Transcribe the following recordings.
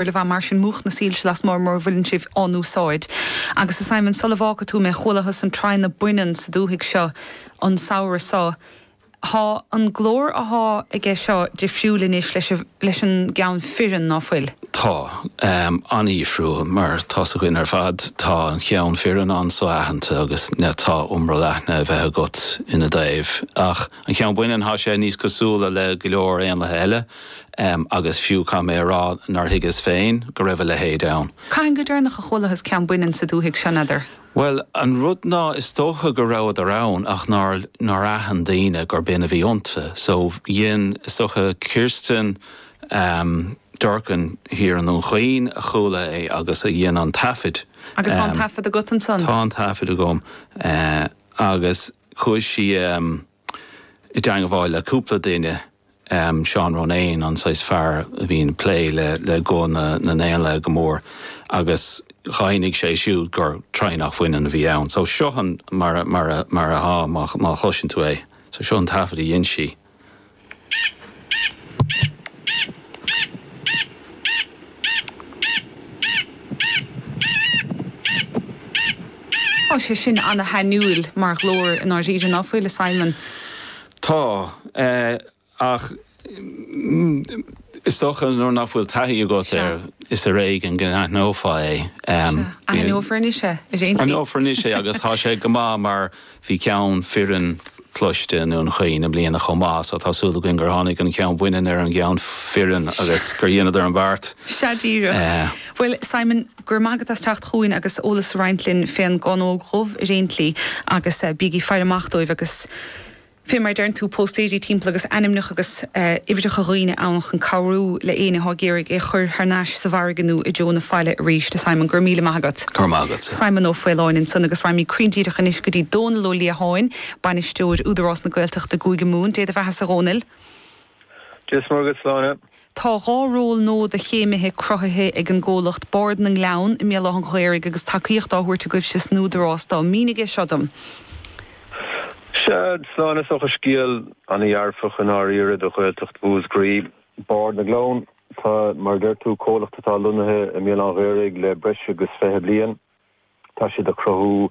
ar a bheith mar sin múch na soilse lasmuigh mura bhfuileann sibh á n-úsáid. Agus a Simon, sula bhfágfaidh tú mé, chualathas an traonach baineann sa dúthaigh seo an samhradh so. Thá an glór athá aige seo difriúil anois leis an gceann fireann, ná fuil? Tá. An-dhifriúil, mar tá a fhios againn ar fad. Tá an cheann fireann an-so-aitheanta agus tá iomrall aithne a bheith agat ina dtaobh. Ach. An ceann baineann, tá sé níos cosúla le go leor éanlaithe eile, agus fiú caithfidh mé a rá nár thuigeas féin go raibh a leithéid ann. Cathain go deireanach a chualathas ceann baineann sa dúthaigh seo, n'fheadar? Bhuel, an rud ná is dócha go rabhadar ann ach nár aithin daoine gurb in a bhí iontu. So dhein, is dócha, Kirsten Durkin thiar i nDún Chaoin a chuala é agus a dhein an taifead. Agus tá an taifead agat ansan? Tá an taifead agam agus. Chuaidh sí i dteangabháil le cúpla duine, Seán Ronayne, an saghas fear a bhíonn ag plé le guth na n-éanlaith go mór, agus dhaingnigh sé siúd gur traonach bhaineann a bhí ann. So seo mar a, mar a, mar a, má chloiseann tú é, so seo an taifead a dhein sí. Tá sé sin ana-shainiúil mar ghlór i ndáiríre, ná fuil, a Simon? Tá, ach is dócha nuair nach bhfuil taithí agat air, is ar éigean go n-aithneofá é. Sea, aithneofar anois é, ar aon tslí. Aithneofar anois é agus tá sé go maith mar Bhí ceann fireann cloiste i nDún Chaoin i mbliana chomh maith so tá súil againn gur tháinig an ceann baineann ar an gceann fireann agus gur dhéanadar an beart. Sea díreach. Bhuel, Simon, go raibh maith agat as teacht chugainn agus eolas a roinnt linn fén gcánóg dhubh ar aon tslí agus bígí ag faire amach dóibh agus fé mar a deireann tú, póstaeirí timpeall agus ainmneacha agus uimhreacha dhaoine ann chun cabhrú le éinne atá ag iarraidh é a chur thar n-ais sa bhfarraige nó i dtreo na faille arís. A Simon, go raibh míle maith agat. Go raibh maith agat. Simon Ó Faoláin ansan agus raghaimid cruinn díreach anois go dtí Dónall Ó Liatháin, Bainisteoir Údarás na Gaeltachta i gCúige Mumhan. Dé do bheathasa a Dhónaill. Dia 's Muire dhuit, Sláine. Tá dhá ról nua do chéimithe cruthaithe ag an gcomhlacht Bard na nGleann i mBéal Átha'n Ghaorthaidh agus tacaíocht á thabhairt agaibhse san Údarás dóibh. Mínigh é seo dom. Sea, Sláine, is dócha scéal ana dhearfach i ndáiríre do Ghaeltacht Mhúsgraí. Bard na nGleann. Tá, mar a deir tú, comhlacht atá lonnaithe i mBéal Átha'n Ghaorthaidh le breis agus fiche bliain. Tá siad ag cruthú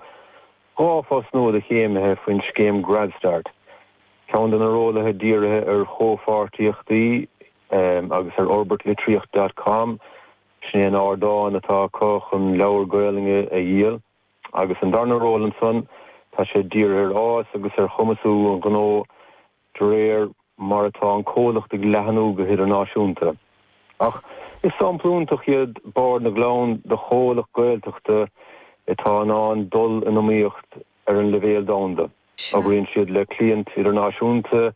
dhá phost nua do chéimithe faoin scéim GradStart, ceann de na rólaithe dírithe ar chomhpháirtíochtaí agus ar fhorbairt litríocht dot com, sin é an ardán atá acu chun leabhair Gaolainne a dhíol, agus an darna ról ansan, tá sé dírithe ar fhás agus ar chumasú an ghnó. de réir mar atá an comhlacht ag leathnú go hidirnáisiúnta. Ach is sampla iontach iad Bard na nGleann de chomhlacht Gaeltachta atá in ann dul in iomaíocht ar an leibhéal domhanda. Oibríonn siad le cliaint idirnáisiúnta,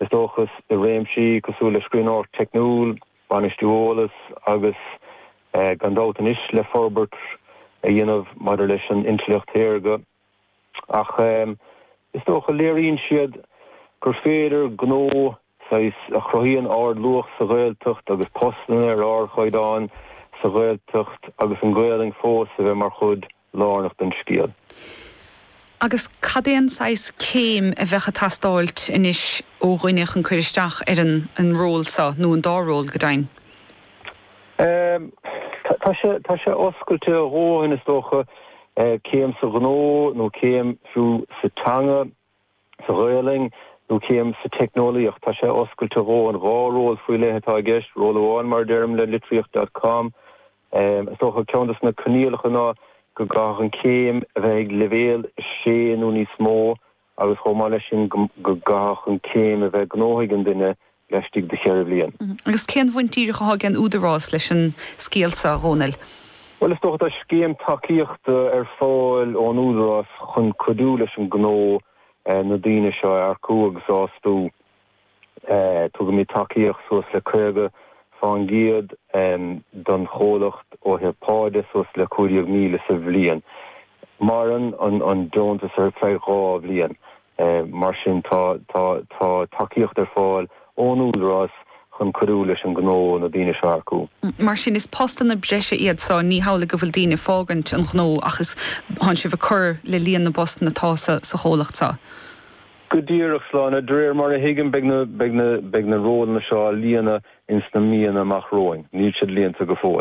is dócha, i réimsí cosúil le scríbhneoireacht teicniúil, bainistiú eolas agus, gan dabht anois, le forbairt a dhéanamh maidir leis an intleacht shaorga. ach is dócha léiríonn siad gur féidir gnó saghas a chruthaíonn ardluach sa Ghaeltacht agus postanna ar ardchaighdeán sa Ghaeltacht agus an Ghaelainn fós a bheith mar chuid lárnach den scéal. Agus cad é an saghas céim a bheadh ag teastáilt anois ó dhuine chun cuir isteach ar an ról so, nó an dá ról, go deimhin? Tá sé oscailte a dhóthain, is dócha, céim sa ghnó nó céim, fiú, sa teanga, sa Ghaolainn, nó céim sa teicneolaíocht, tá sé oscailte a dhóthain. Dhá ról faoi leith atá i gceist, ról amháin, mar a deirim, le Litríocht dot com. Is dócha, ceann de na coinníollacha ná go gcaithfeadh an chéim a bheith ag leibhéal 6 nó níos mó, agus chomh maith leis sin go gcaithfeadh an céim a bheith gnóthaithe ag an duine laistigh de cheithre bhliain. Agus cén bhaint díreach atá ag an Údarás leis an scéal seo, a Dhomhnaill? Bhuel, is dócha, tá scéim tacaíochta ar fáil ón Údarás chun cuidiú leis an gnó na daoine seo a earcú agus a fhostú. Tugaimid tacaíocht suas le 50 fán gcéad don chomhlacht ó thaobh pá de, suas le 15,000 sa bhliain. Maireann an deontas ar feadh dhá bhliain. Mar sin tá tacaíocht ar fáil ón Údarás chun cuidiú leis an ngnó na daoine seo a earcú. Mar sin is postanna breise iad seo, ní hamhlaidh go bhfuil daoine ag fágaint an ghnó ach is, tánn sibh ag cur le líon na bpostanna atá sa chomhlacht seo. Go díreach, a Shláine! De réir mar a thuigim, beidh na rólanna seo á líonadh ins na míonna amach romhainn. Níl siad líonta go fóill.